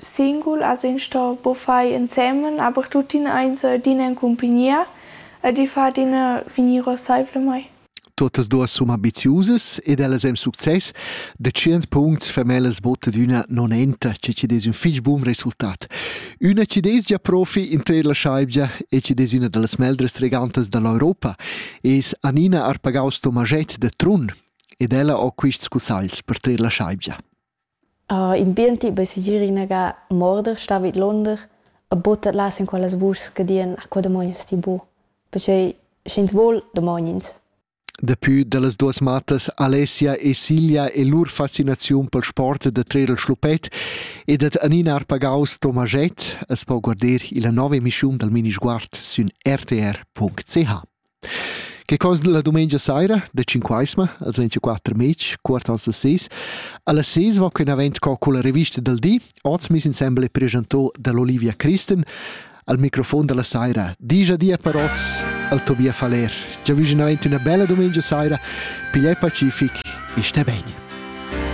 Singul as in sto po far insemen, aber tuttina eins d'in en cumpagnia ed i fa adina vegnir rasseivlamaing. Tuottas duos sun ambiziusas ed ellas han success. Da tschient puncts fa mel as botta d'üna nonenta, che chi'd es ün fich bun resultat. Üna chi'd es già profi in trer la schaivgia e chi'd es üna da las meglras regantas da l'Europa es Anina Arpagaus Tomaschett da Trun ed ella ho quists cussagls per trer la schaivgia. In biendi bei segir inaga morder, star vid l'onder e butter las en quellas vuschs che dian a co damogns ti bu. Pertgei sch'ins vul, damogn'ins. Dapi dallas duas mattas Alessia e Silja e lur fascinaziun pel sport da trer il schluppet e dat Anina Arpagaus Tomaget as po guarder illa nova emischiun dal minisguard sün rtr.ch. Che cosa la dumengia saira da Cinquaisma, als 24 mezs, quartal a ses. Alla ses va quin avent co con la rivista del di, oz mis insembel e presentò dall'Olivia Christen al microfon della saira. Digia dia per oz al Tobias Faller. Già vüginavent una bella dumengia saira, pigliai pacific e stai bene.